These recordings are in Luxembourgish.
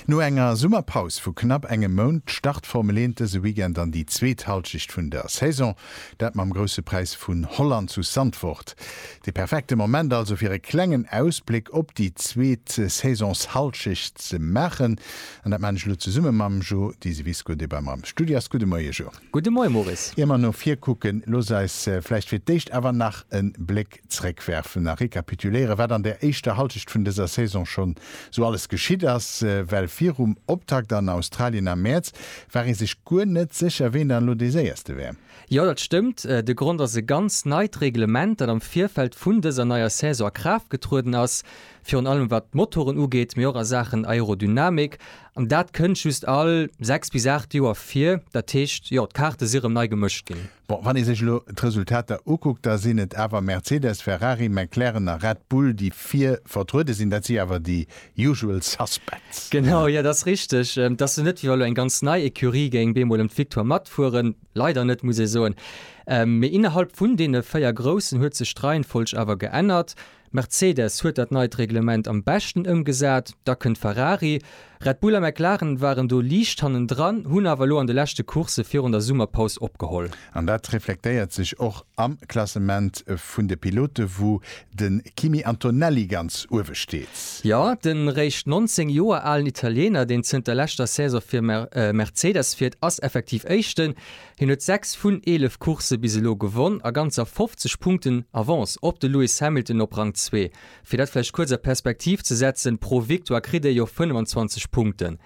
No enger Summerpaus vu knapp engem Mount start d'Formel 1 dëse Weekend an déi zweet Hallschicht vun der Saison. Dat mam Grousse Präis vun Holland zu Zandvoort. De perfekte Moment also fir e klengen Ausbléck op déi zweet Saisonshallschicht ze maachen. An dat maan ech elo zesumme mam Jo Diseviscourt, dee bei mer am Studio ass. Gudde Moie Jo. Gudde Moie Maurice. Ier mer no vir kucken, looss eis vläicht fir d'éischt awer nach e Bléck zréckwerfen a rekapituléieren, wat an der éischter Hallschecht vun dëser Saison schonn esou alles geschitt ass. Well virum Optakt an Australien am Mäerz war ee sech guer net sécher, ween dann elo dee Séierste wär. Jo, dat stëmmt. De Grond ass e ganz neit Reglement, dat am Virfeld vun dëser neier Saison a Kraaft getrueden ass, virun allem wat d'Motoren ugeet, mee och a Saachen Aerodynamik. An dat kënnt just all sechs bis aacht Joer vir. Dat heescht, jo, d'Kaarte si erëm nei gemëscht ginn. Bon, wann ee sech elo d'Resultater ukuckt, da sinn et awer Mercedes, Ferrari, McLaren a Red Bull, déi vir vertruede sinn. Dat si awer déi usual suspects. Genau, jo, dat ass richteg. Et ass jo net, wéi wa elo eng ganz nei Ecurie géing bemol ëm d'Victoire matfueren. Leider net, muss ee soen. Mee innerhalb vun deene véier Groussen huet sech d'Reihenfolg awer geännert. Mercedes huet dat neit Reglement am beschten ëmgesat, da kënnt Ferrari. Red Bull a McLaren waren do liicht hannendran, hunn awer elo an de leschte Coursse virun der Summerpaus opgeholl. An dat reflektéiert sech och am Klassement vun de Pilote wou de Kimi Antonelli ganz uewe steet. Jo, den réischt 19 Joer alen Italiener, deen zënter leschter Saison fir Mercedes fiert, ass effektiv Éischten. Hien huet 6 vun 11 Coursse bis elo gewonn a ganzer 50 Punkten Avance op de Lewis Hamilton op Rang zwee. Fir dat vläicht kuerz a Perspektiv ze setzen, pro Victoire kritt ee jo 25 Punkten.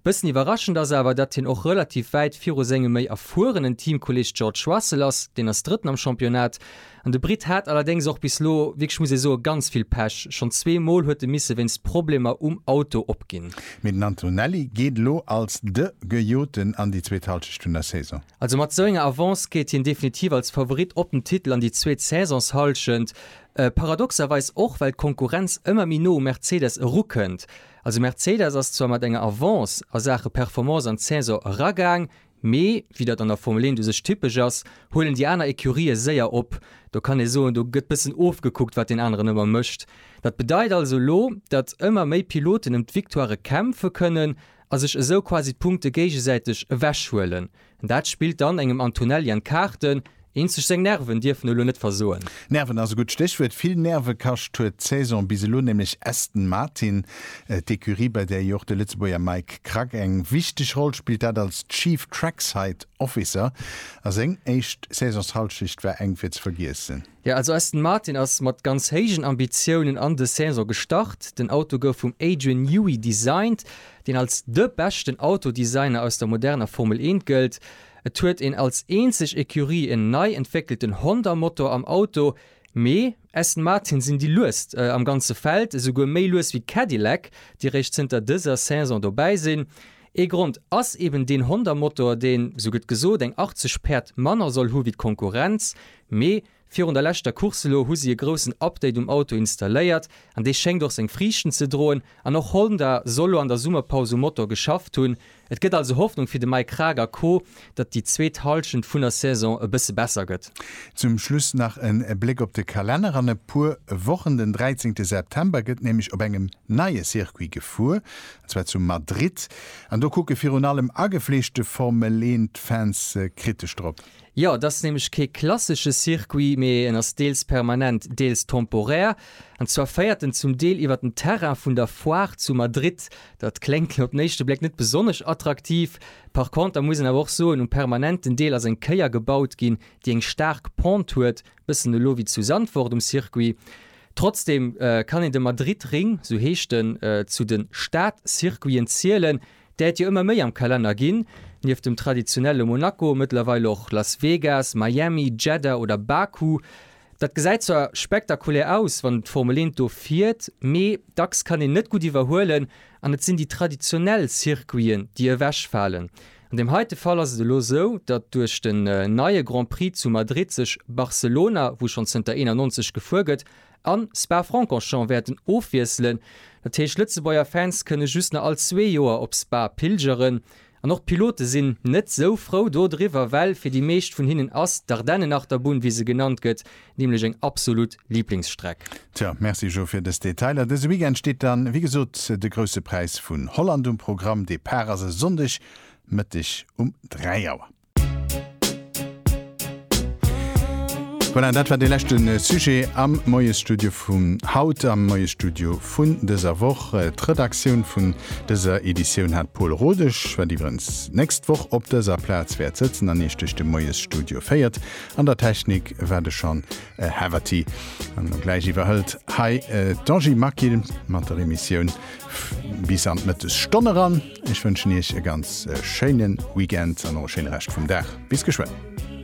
Bëssen iwwerraschend ass awer, datt hien och relativ wäit viru sengem méi erfuerenen Teamkolleeg George Russell ass, deen ass Drëtten am Championnat. An de Brit hat allerdéngs och bis lo wierklech, muss ee soen, ganz vill Pech. Schonn zwee Mol huet e misse wéinst Problemer um Auto opginn. Mee den Antonelli geet elo als de Gejoten an déi zweet Hallschecht vun der Saison. Also mat esou enger Avance geet hien definitiv als Favorit op den Titel an déi zweet Saisonshallschent. Paradoxerweis och, well d'Konkurrenz ëmmer méi no u Mercedes erukënnt. Also Mercedes ass zwar mat enger Avance a Saache Performance an d'Saison eragaang, Mee, wéi dat an der Formel 1 u sech typesch ass, huelen déi aner Ecurië séier op. Do kann ee soen, do gëtt bëssen ofgekuckt, wat deen aneren ëmmer mécht. Dat bedeit also elo, datt ëmmer méi Piloten ëm d'Victoirë kämpfe kënnen a sech esou quasi d'Punkte géigesäiteg ewechhuelen. Dat spillt dann engem Antonelli an d'Kaarten. Eenzeg seng Nerven dierfen elo net versoen. Nerven ass e gutt Stéchwuert. Vill Nerve kascht huet d'Saison bis elo nämlech Aston Martin, d'Ecurie, bei där jo och de Lëtzebuerger Mike Krack eng wichteg Roll spillt, dat als Chief Trackside Officer. A seng éischt Saisonshallschecht war enk fir ze vergiessen. Jo, also Aston Martin ass mat ganz héijen Ambitiounen an de Saison gestart. Den Auto gouf vum Adrian Newey designt, deen als de beschten Autodesigner aus der moderner Formel Eent gëllt. Et huet een als eenzeg Ecurie en nei entwéckelten Honda-Motor am Auto, mee Aston Martin sinn déi luest am ganze Feld, esouguer méi lues wéi Cadillac, déi réischt zënter dëser Saison dobäi sinn. Ee Grond ass eben deen Honda-Motor, deen, esou gëtt gesot, eng 80 Päerd manner soll hu wéi d'Konkurrenz, mee Virun der leschter Course elo hu si e groussen Update um Auto installéiert an dee schéngt och seng Friichten ze droen. An och Honda soll elo an der Summerpaus um Motor geschafft hunn. Et gëtt also Hoffnung fir de Mike Kraag a Co, datt déi zweet Hallschent vun der Saison e bësse besser gëtt. Zum Schluss nach en Bléck op de Kalenner. An e puer Wochen, den 13 September, gëtt nämlech op engem neie Circuit gefuer, an zwar zu Madrid. An do kucke virun allem agefleeschte Formel-Eent-Fans kritesch drop. Jo, et ass nämlech kee klassesche Circuit, mee en ass deels permanent, deels temporär. An zwar féiert en zum Deel iwwer den Terrain vun der Foire zu Madrid. Dat kléngt elo op den éischte Bléck net besonnesch attraktiv. Par conter muss een awer och soen, um permanenten Deel ass eng Kéier gebaut ginn, déi eng staark Pente huet, bëssen elo wéi zu Sandfort um Circuit. Trotzdem kann een de Madrid-Ring, esou heescht en, zu de Stadcircuiten zielen. D'äert jo ëmmer méi am Kalenner ginn, nieft dem traditionelle Monaco mëttlerweil och Las Vegas, Miami, Jeddah oder Baku. Dat gesäit zwar spektakulär aus, wann d'Formel 1 do fiert, mee dacks kann een net gutt iwwerhuelen an et sinn déi traditionell Circuiten, déi ewechfalen. An deem heite Fall ass et elo sou, datt duerch den neie Grand Prix zu Madrid sech Barcelona, wou schonn zënter 91 gefuer gëtt, a Spa-Francorchamps wäerten ofwiesselen. Dat heescht, Lëtzebuerger Fans kënne just nach all zwee Joer op Spa pilgeren. An och d'Pilote sinn net esou frou do driwwer, well fir déi meescht vun hinnen ass d'Ardennenachterbunn, wéi se genannt gëtt, nämlech eng absolut Liblingsstreck. Tjo, Merci Jo fir dës Detailer. Dëse Weekend steet dann, wéi gesot, de Grousse Präis vun Holland um Programm. Depart ass e Sonndeg Mëtteg um 3 Auer. Voilà, dat war de leschte Sujet am Moiesstudio vum haut, am Moiesstudio vun dëser Woch. D'Redaktioun vun dëser Editioun hat Paul Rodesch, wat iwwerens d'nächst Woch op dëser Plaz wäert sëtzen an Iech duerch de Moiesstudio féiert. An der Technik war de Sean Haverty. An no gläich iwwerhëlt hei d'Angie Maquil mat der Emissioun bis an d'Mëttesstonn eran. Ech wënschen Iech e ganz schéinen Weekend an och e schéine Rescht vum Dag. Bis geschwënn!